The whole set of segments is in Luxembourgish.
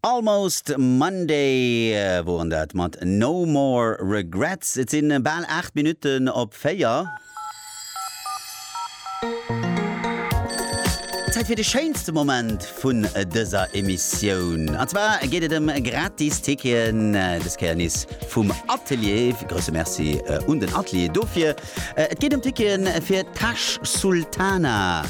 Almost Monday woren dat mat No More Regrets. Et sin baal 8 Minuten op 4. Zäit fir de schéinste Moment vun dëser Emissioun. An zwar geet et em gratis Ticketen, des Kéier nees vum Atelier. Grousse Merci un den Atelier dofir. Et geet em Ticketen fir Tash Sultana.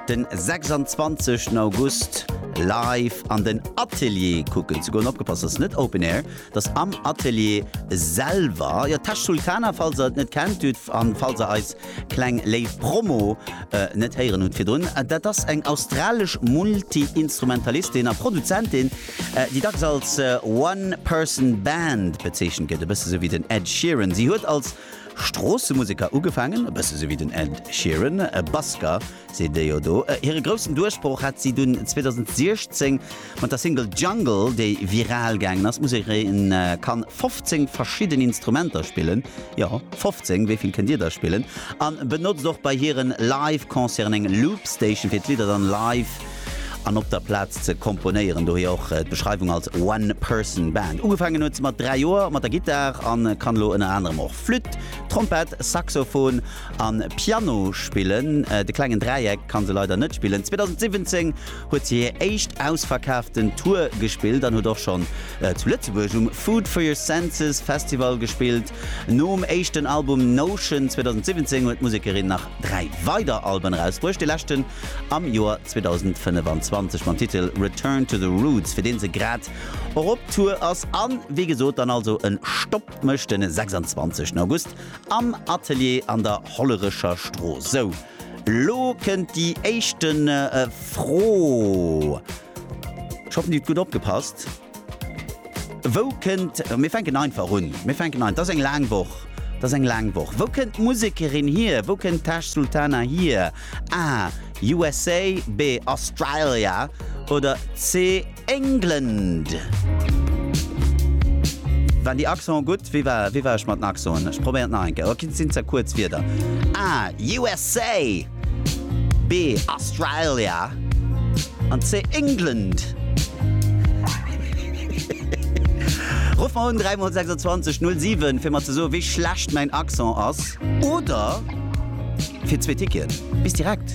Den 26 en August live an den Atelier kucken ze goen. Opgepasst, ass net Open Air, et ass am Atelier selwer. Jo, Tesch Sultana, falls der et net kennt hutt an falls der eis kleng léif Promo net héieren hutt virdrun. Dat ass eng australesch Multi-Instrumentalistin a Produzentin, déi dacks als One Person Band bezeechent gëtt, e bësse sou wéi den Ed Sheeran. Si huet als Stroossemuseker ugefaangen, e bësse sou wéi den Ed Sheeran, e Basker seet ee jo do. Hire groussen Duerchbroch hat si dunn 2016 mat der Single Jungle, déi viral gaangen ass. D'Musekerin kann 15 verschidden Instrumenter spillen, jo 15, wéi vill kënnt Dir der spillen? an benotzt och bei hiren Live-Concerten eng Loop-Station fir d'Lidder dann live an op der Plaz ze komponéieren, dohier och d'Beschreiwung als One Person Band. Ugefaangen huet se mat 3 Joer mat der Gittar an kann elo ënner anerem och Flütt, Trompett, Saxophon an Piano spillen. De klengen Dräieck kann se leider net spillen. 2017 huet se hir éischt ausverkaaften Tour gespillt an huet och schonn zu Lëtzebuerg um Food For Your Senses Festival gespillt. Nom éischten Album Notion 2017 huet d'Musekerin nach 3 weider Alben erausbruecht. Dee leschten am Joer 2025 mam Titel Return to the Roots, fir deen se grad och op Tour ass an wéi gesot dann also en Stopp mécht den 26 August am Atelier an der Hollerecher Strooss. Sou, lo kënnt déi éischten Fro. Ech hoffen dir hutt gutt opgepasst. Wou kënnt, mir fänken einfach un, mir fänken ein, dass eng laang Woch, dass eng laang Woch. Wou kënnt d'Musekerin hier? Wou kënnt Tash Sultana hier? A, USA, B, Australia oder C, England? Waren déi Accenten gutt? Wéi war, wéi war ech mat den Accenten? Ech probéieren et nach eng Kéier. Oh, sinn ze kuerz Wierder. A, USA. B, Australia, an C, England. Ruff mer un 3 mol 26 07 fir mer ze soe wéi schlecht mäin Accent ass oder fir zwee Ticketen. Bis direkt!